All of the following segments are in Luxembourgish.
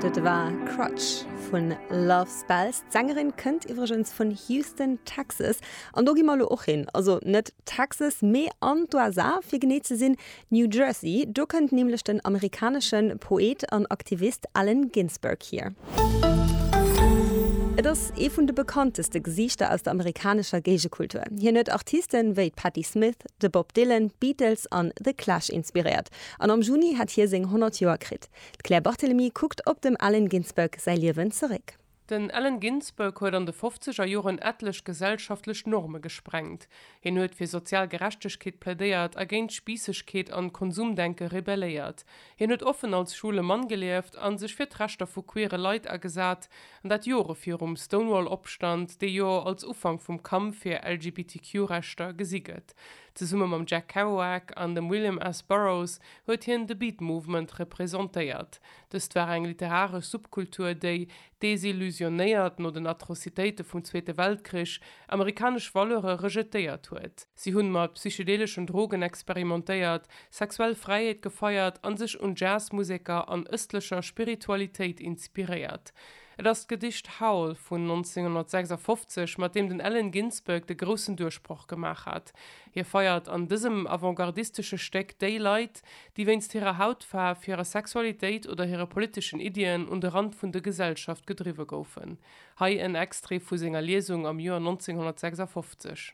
Dat war Crutch vun Love Spells. D'Sängerin kënnt iwwregens vun Houston, Texas. An do gi mer elo och hin. Also net Texas, mee an d'USA, fir genee ze sinn New Jersey. Do kënnt nämlech den amerikanesche Poet an Aktivist Allen Ginsberg hier. Et ass ee vun de bekannteste Gesiichter aus der amerikanescher Géigekultur. Hien huet Artiste wéi d'Patti Smith, de Bob Dylan, d'Beatles an The Clash inspiréiert. An am Juni hätt hie seng 100 Joer kritt. D'Claire Barthelemy kuckt op dem Allen Ginsberg säi Liewen zeréck. Den Allen Ginsberg huet an de fofzeger Joren etlech gesellschaftlech Norme gesprengt. Hien huet fir sozial Gerechtegkeet plädéiert a géint Spiissegkeet an Konsumdenke rebelléiert. Hien huet offen als schwule Mann gelieft a sech fir d'Rechter vu queere Leit agesat, an dat Jore virum Stonewall-Opstand, dee jo als Ufank vum Kampf fir LGBTQ-Rechter gesi gëtt. West. Zesumme mam Jack Kerouac an dem William S. Burroughs huet hien de Beat Movement representéiert. Dëst war eng literaresch Subkultur, déi, desillusionéiert no den Atrocitéite vum Zweete Weltkrich, amerikanesch Valeure rejetéiert huet. Si hunn mat psychedeleschen Drogen experimentéiert, sexuell Fräiheet gefeiert an sech un Jazzmuseker an ëstlecher Spiritualitéit inspiréiert. Et ass d'Gedicht Howl vun 1956, mat deem den Allen Ginsberg de groussen Duerchbroch gemaach hat. Hie feiert an dësem avantgardistesche Stéck déi Leit, déi wéinst hirer Hautfaarf, hirer Sexualitéit oder hire politeschen Iddien un de Rand vun de Gesellschaft gedriwwe goufen. Hei en Extrait vu senger Liesung am Joer 1956.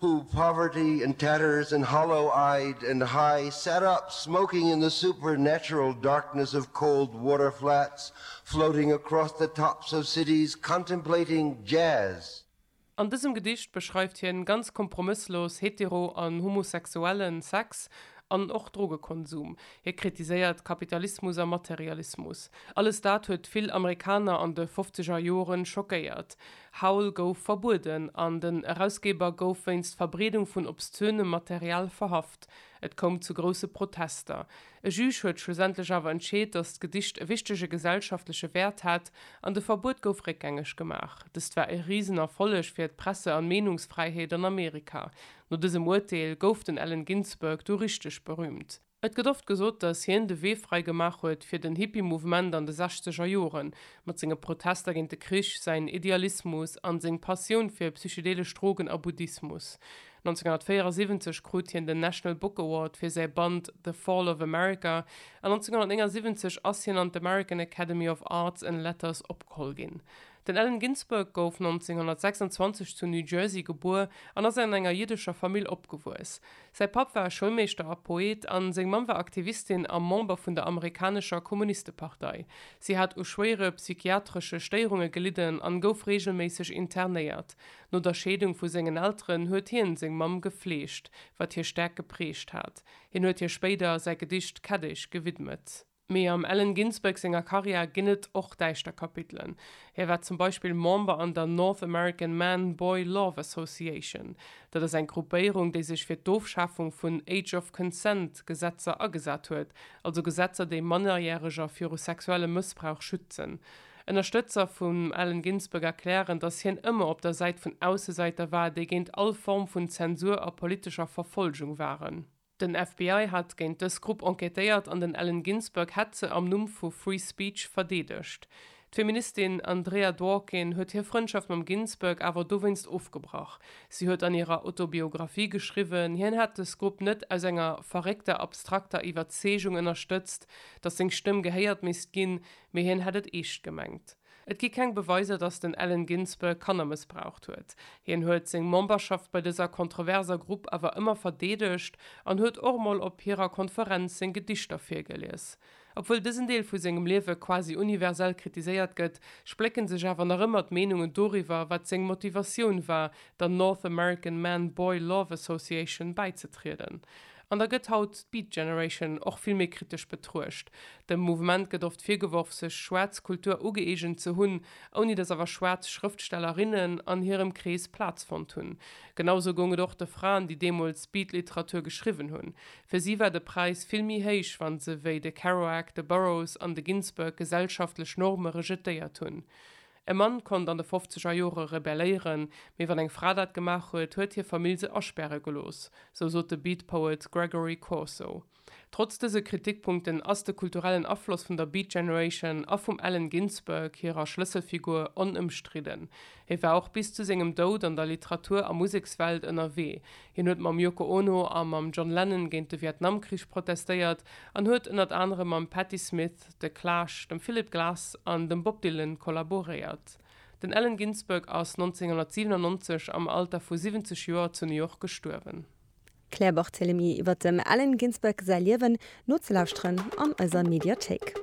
Who poverty and tatters and hollow eyed and high sat up smoking in the supernatural darkness of cold water flats floating across the tops of cities contemplating jazz. An dësem Gedicht beschreift hien ganz kompromësslos hetero an homosexuellen Sex an och Drogekonsum. Hie kritiséiert Kapitalismus a Materialismus. Alles dat huet vill Amerikaner an de fofzeger Joren schockéiert. Howl gouf verbueden an den Erausgeber gouf wéinst Verbreedung vun obszönem Material verhaft. Et koum zu grousse Protester. E Juge huet schlussendlech awer entscheet, datt d'Gedicht e wichtege gesellschaftleche Wäert hat an de Verbuet gouf réckgängeg gemaach. Dëst war e Risenerfolleg fir d'Presse an Meenungsfräiheet an Amerika. No dësem Urteel gouf den Allen Ginsberg du richteg berüümt. Et gëtt oft gesot, datt hien de Wee fräi gemaach huet fir den Hippie-Mouvement an de sechzeger Joren, mat senge Protester géint de Krich, säin Idealismus an seng Passioun fir psychedelesch Drogen a Buddhismus. 1974 krut hien den National Book Award fir säi Band The Fall of America, an 1979 ass hien an d'American Academy of Arts and Letters opgeholl ginn. Den Allen Ginsberg gouf 1926 zu New Jersey gebuer an ass an enger jiddescher Famill opgewuess. Säi Papp war Schoulmeeschter a Poet a seng Mamm war Aktivistin a Member vun der amerikanescher Kommunistepartei. Si hat u schwéiere psychiatresche Stéierunge gelidden an gouf reegelméisseg internéiert. No der Scheedung vu sengen Elteren huet hien seng Mamm gefleegt, wat hie staark geprägt hat. Hien huet hir spéider säi Gedicht Kätteg gewidmet. Mee am Allen Ginsberg senger Karriär ginn et och däischter Kapitelen. Hie war zum Beispill Member an der North American Man Boy Love Association. Dat ass eng Gruppéierung, déi sech fir d'Ofschafung vun Age of Consent Gesetzer agesat huet, also Gesetzer, déi Mannerjäreger viru sexuellem Mëssbrauch schützen. Ënnerstëtzer vum Allen Ginsberg erklären, datt hien ëmmer op der Säit vun Aussesäiter war, déi géint all Form vun Zensur a politescher Verfolgung waren. Den FBI hat géint dës Grupp enquêtéiert an den Allen Ginsberg hätt se am Numm vu Free Speech verdeedegt. D'Feministin Andrea Dworkin huet hir Frëndschaft mam Ginsberg awer dowéinst ofgebrach. Si huet an hirer Autobiographie geschriwwen, hien hätt dës Grupp net aus enger verréckter abstrakter Iwwerzeegung ënnerstëtzt, datt seng Stëmm gehéiert misst ginn, mee hien hätt et eescht gemengt. Et gi keng Beweiser, datt den Allen Ginsberg Kanner mëssbraucht huet. Hien huet seng Memberschaft bei dëser kontroverser Grupp awer ëmmer verdeedegt an huet och mol op hirer Konferenz seng Gedichter virgelies. Obwuel dësen Deel vu sengem Liewe quasi universell kritiséiert gëtt, splécke sech awer nach ëmmer d'Meenungen doriwwer, wat seng Motivatioun war, der North American Man-Boy Love Association bäizetrieden. An da gëtt haut d'Beat Generation och vill méi kritesch betruecht. Dem Mouvement gëtt oft virgeworf, sech schwaarz Kultur ugëeegent ze hunn, ouni datt awer schwaarz Schrëftstellerinnen an hirem Krees Plaz fonnt hunn. Genausou goung et och de Fraen, déi deemools Beat-Literatur geschriwwen hunn. Fir si war de Präis vill méi héich, wa se wéi de Kerouac, de Burroughs an de Ginsberg gesellschaftlech Norme rejetéiert hunn. E Mann konnt an de fofzeger Jore rebelléieren, mee wann eng Fra dat gemaach huet, huet hir Famill se aspäre gelooss, sou sot de Beat Poet Gregory Corso. Trotz dëse Kritikpunkten ass de kulturellen Afloss vun der Beat Generation a vum Allen Ginsberg hirer Schlësselfigur onëmstridden. Hie war och bis zu sengem Doud an der Literatur a Musekswelt ënnerwee. Hien huet mam Yoko Ono a mam John Lennon géint de Vietnamkrich protestéiert an huet ënnert anerem mam Patti Smith, The Clash, dem Philip Glass an dem Bob Dylan kollaboréiert. Den Allen Ginsberg ass 1997 am Alter vu 70 Joer zu New York gestuerwen. D'Claire Barthelemy iwwer dem Allen Ginsberg säi Liewen nozelauschteren an eiser Mediathéik.